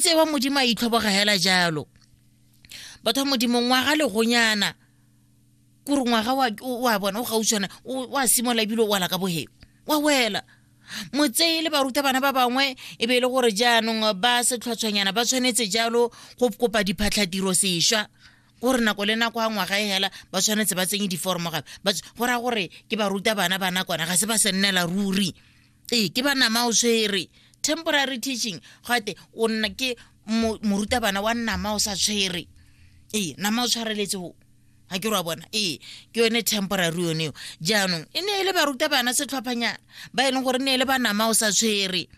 tse wa modimo a itlhoboga hela jalo batho ba modimo ngwaga legonyana kore ngwaga wa bona o gautshwana wa simola ebile o wala ka boheo wa wela motseye le baruta bana ba bangwe e be e le gore jaanong ba setlhotshwanyana ba tshwanetse jalo go kopa diphatlhatiro sešwa gore nako le nako a ngwaga e hela ba tshwanetse ba tsenye diforomo gape go raya gore ke baruta bana ba nakwana ga se ba se nnela ruri ee ke ba nama o tshwere temporary teaching gate o nna ke morutabana wa nama o sa tshwere ee nama o tshwareletse go ga ke ra bona ee ke yone temporary yone eo jaanong e ne e le barutabana setlhophanyana ba e leng gore ne e le ba nama o sa tshwere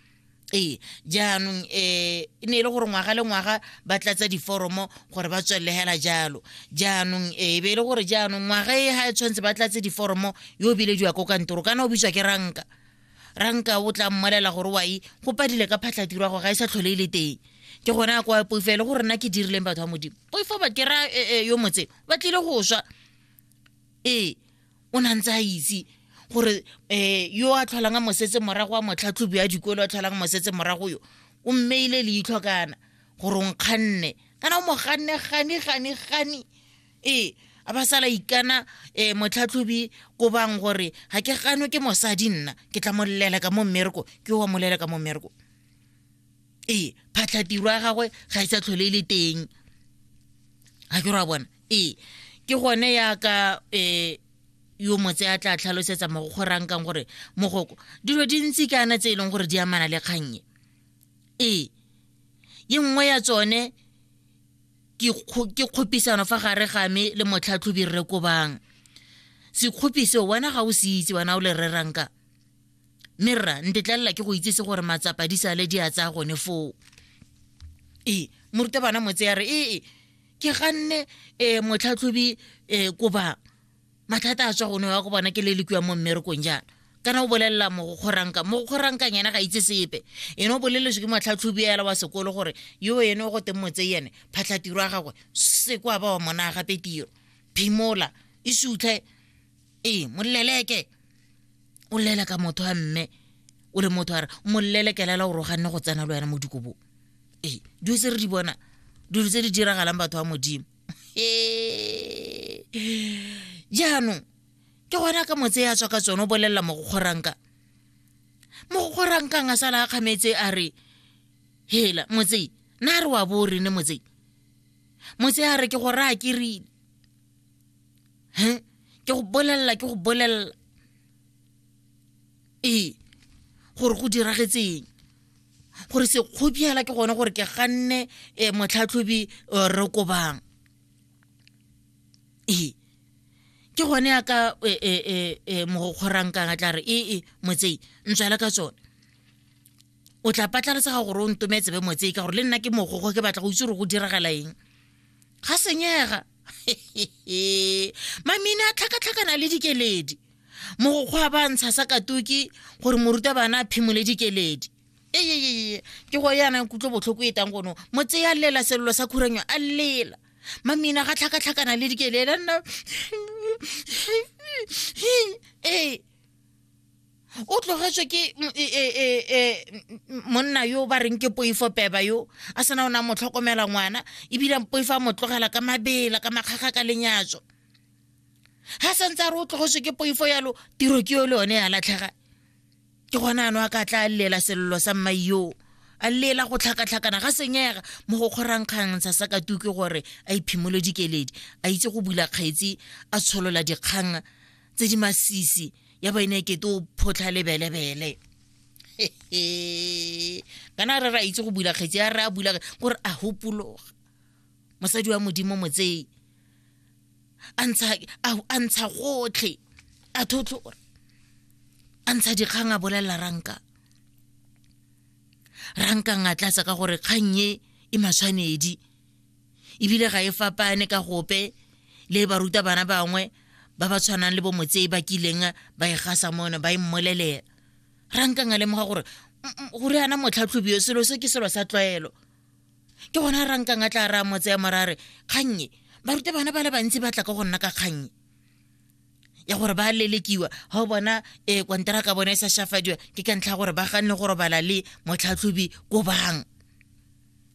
ee jaanong um e ne e le gore ngwaga le ngwaga ba tlatsa diforomo gore ba tswelele hela jalo jaanong e be e le gore jaanong ngwaga e ga e tshwanetse ba tlatse diforomo yo o bilediwa ko kantoro kana o bitswa ke ranka ranka o tla mmolela gore wa e go padile ka phatlhatiro ya go ga e sa tlhole e le teng ke gone a kwa poifo le gore nna ke dirileng batho ba modimo poifo ba kera e, e, yo motse ba tlile go swa ee o na ntse a itse gore um yo a tlholang a mosetse morago wa motlhatlhobi ya dikolo a tlholang mosetse morago yo o mmeile leitlho kana gore o nkganne kana o mo ganne gane gane gane ee a ba sala ikana um motlhatlhobi ko bang gore ga ke gano ke mosadi nna ke tla molelela ka mo mmereko ke wa molela ka mo mmereko ee phatlhatiro ya gagwe ga e sa tlhole e le teng ga ke ra bona ee ke gone yaka um eh, yo motse a tla tlhalosetsa mo go kgorang kang gore mogoko dilo di ntsi ke ana tse e leng gore di amana le kgannye ee ye nngwe ya tsone ke kgopisano fa gare ga me le motlhatlhobi rre kobang sekgopi seo wena ga o se itse wena o le reranka mme rra ntetlelela ke go itsese gore matsapa di sale di a tsaya gone foo ee morutabana motse ya re ee ke ganne um motlhatlhobi um koba mathata a tswa gone wa go bona ke le le kua mo mmerekong jaana kana o bolelela mogokgoranka mogokgoranka yena ga itse sepe ene o boleletswe ke motlhatlhobi ela wa sekolo gore yo ene o go teng motse ene phatlhatiro ya gagwe se kwa ba wa monaa gape tiro phimola e sutlhe ee moleleke o lele ka motho a mme o le motho a re molelekelela o roganne go tsena le wena mo dikobong ee dilo tse re di bona dilo tse di diragalang batho ba modimo Ee. jaanong ke gona ka motse ya tswa ka tsone o bolelela mogokgoranka mogokgorankang a sala a kgametse a re hela motse na re wa bo rene motse motse a re ke go raya ke rile ke go bolelela ke go bolelela ee gore go diragetseng gore sekgobiela ke gone gore ke ganne um motlhatlhobi eh, re kobang ee ke gone ya ka eh, mogokgorankang a tla re ee motsei ntswela ka tsone o tla patlaletsaga gore o ntometse be motsei ka gore le nna ke mogogo ke batla go itse gore go diragala eng ga senyega mamine a tlhakatlhakana le dikeledi mogokgwa ba ntsha sa katoki gore moruta bana a phimole dikeledi eyeyeye ke go yana kutlo botlhoko e tang gono mo tseya lela selelo sa khuranyo a lela mamina ga tlhakatlhakana le dikelela nna ee o tlogetswe ke e, e, e, monna yo ba reng ke poifo peba yo a sena o ne a mo tlhokomela ngwana ebile poifo a mo tlogela ka mabela ka makgaga ka lenyatso ga santse a re o tlogoswe ke poifo yalo tiro ke yo le yone ya latlhega ke gona ano a ka tla a llela selelo sa mmai yoo a llela go tlhakatlhakana ga senyega mo go kgorankgang sa sa katuke gore a iphimole dikeledi a itse go bula kgaetsi a tsholola dikgang tse di masisi ya ba ene kete o photlha lebelebele kana re ra itse go bula kgaetsi a re a bula gore a hopologa mosadi wa modimo motsei a ntsha a ntsha gotlhe a thotlo gore a ntsha dikgang a bolelela ranka ranka nga tlatsa ka gore kgang e e matshwanedi ebile ga e fapane ka gope le baruta bana bangwe ba ba tshwanang le bomotsei ba kileng ba e gasa mone ba e mmolelela ranka nga lemoga gore gore ana motlhatlhobi yo selo se ke selo sa tlwaelo ke gona ra nkang a tla ra motse ya morare kgannye barute bana ba le bantsi ba tla ka go nna ka kgannye ya gore ba lelekiwa ga o bona e kwantara ka bona e sa shafadiwa ke ka ntlha gore ba ganne go robala le motlhatlhobi ko bang